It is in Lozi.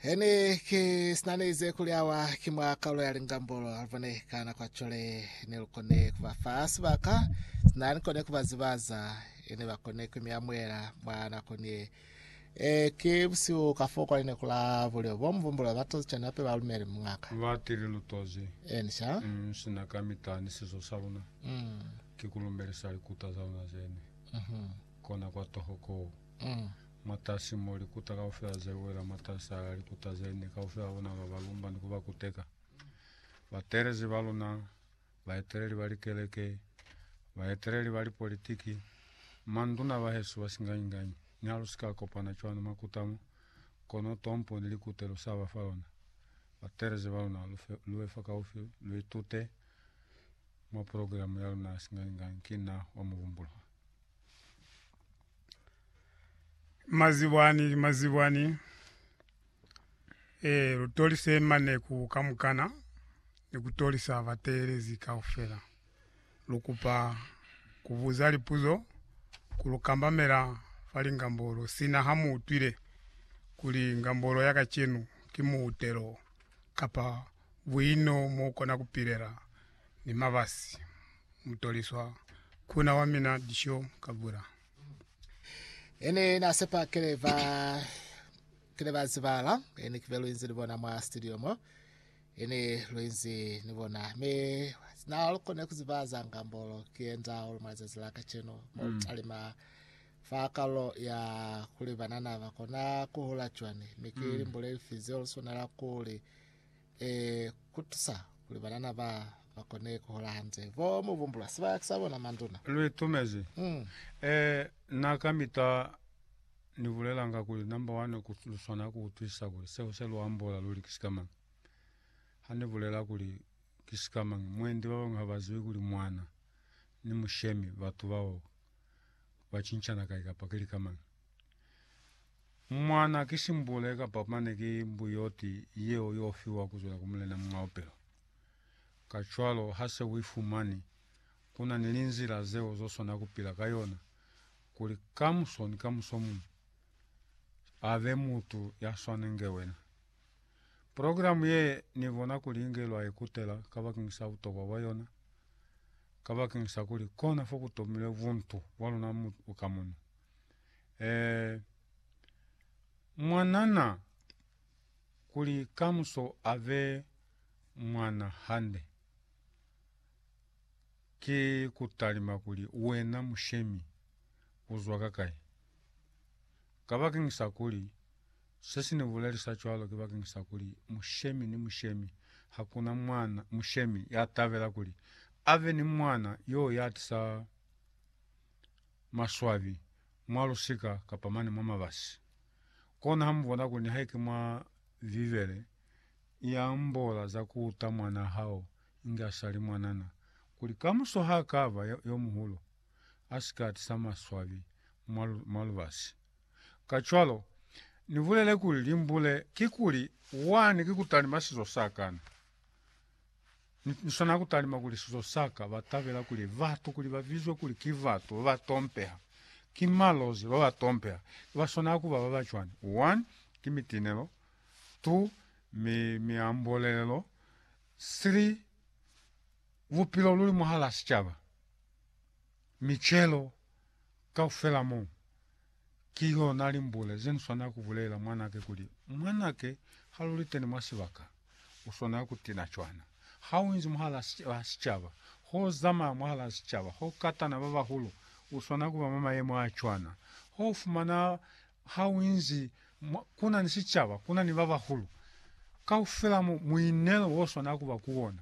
Hene ke sinaneze kuli awa ki mwa kaulo ya lingambolo alibone kana kwa chole ne lukone kuba fa sibaka sinani kone kuba zibaza ene bakone kwimiamwela mwa nako nie e ke busiu ka fo kwa line kula bulio bo mvumbula batozi chana pe ba lumele mungaka Lwate le lutozi enisha mm, sina ka mita ni sizo sa luna mm ki ku lumelisa likuta za luna zene mhm kona kwa toho koo mm Mwatasi mo likuta kaufela ze wela, mwatasi ala likuta ze ne, kaufela bona ba ba lumba ni ku ba kuteka. Batelezi ba luna, baeteleli ba likeleke, baeteleli ba lipolitiki, manduna bahesu ba singanyi-nganyi, ni ha lu si ka kopana cwani mwa kuta mo, kono tompo ni likute lu sa ba fa lona. Batelezi ba luna, lu fe, lu be fakaufi, lu itute mwa programe ya luna ya singanyi-nganyi, ki Na wa Muvumbuliwa. Mazibwani, mazibwani eh lutolise mane ku kamukana ni kutolisa bateelezi kaufela. Lukupa kubuza lipuzo ku lukambamela fa lingambolo sina ha mu utwile kuli ngambolo ya kacenu ki muutelo kapa buino mo kona kupilela ni mabasi. mutoliswa kuna wa mina disho ka bura. Ene na sepa kele ba kele ba zibala ene kibe luinzi ni bona mwa studio mo ene luinzi ni bona me na kone ku zibaza ngambolo kienza olo mwa zazi la kacheno mo mm. talima fa kalo ya kuli banana ba kona ku hula chwane me ke mm. limbole lifize olo sona la kuli Ee, ku tusa kuli banana ba ba kone ku hola hande. Bo mu bumbula sibaka sa bona, manduna? Lu itumezi. Mm. Ee, na kamita ni bulelanga kuli, number one, ku, lu swana ku utwisisa kuli seo se lu ambola luli ki sikamañi. Ha ni bulela kuli ki sikamañi, mwendi ba bañwi ha ba zibi kuli mwana ni mushemi, batu bao, ba cincana kai kapa ki lika mañi. Mwana ki simbule kapa mane ki mbuyoti yeo yo fiwa kuzwela ku mulena mwa upelo. Kacwalo, ha se uifumani, kuna ni linzila zeo zo swana kupila ka yona kuli kamuso ni kamuso muñwi abe mutu ya swana inge wena. Progilamu ye ni bona kuli inge lwa ikutela kabakeni sa butokwa bwa yona, kabakeni sa kuli kona fo ku tomilwe buntu bwa luna ka munu. Eh, mwanana, kuli kamuso ave mwana hande. Ki kutalima kuli wena mushemi uzwa ka kai. Ka bakeng sa kuli, se si ni bulelisa cwalo ki bakeng sa kuli mushemi ni mushemi, hakuna mwana mushemi ya tabela kuli ave ni mwana yo ya tisa maswabi mwa lusika kapa mane mwa mabasi. Kona ha mu bona kuli nihaike mwa Bibele i ambola za ku uta mwanaa hao inge a sa li mwanana, kuli kamuso ha ka ba yo muhulu, a si ka tisa maswabi mwa lubasi. Kacwalo, ni bulele kuli limbule kikuli wani ki ku talima sizo sa kana. Ni swana ku talima kuli sizo sa ka ba tabela kuli batu kuli ba bizwe kuli ki batu ba ba tompeha. Ki malozi ba ba tompeha. Ki ba swana ku ba ba ba cwani. 1, Ki mitinelo. 2, mi, miambolelelo. 3, bupilo luli mwahala sicaba. Micelo kaufela mo. Ki yona limbule ze ni swanela ku bulelela mwanake kuli, Mwanake, ha lu li teni mwa sibaka, u swanela ku tina cwana. Ha u inzi mwahal'a sicaba, ho zamaya mwahal'a sicaba, ho katana ba bahulu, u swanela ku ba mwa mayemo a cwana. Ho fumana ha u inzi ku na ni sicaba, ku na ni ba bahulu, kaufela mo, muinelo wo swanela ku ba ku wona.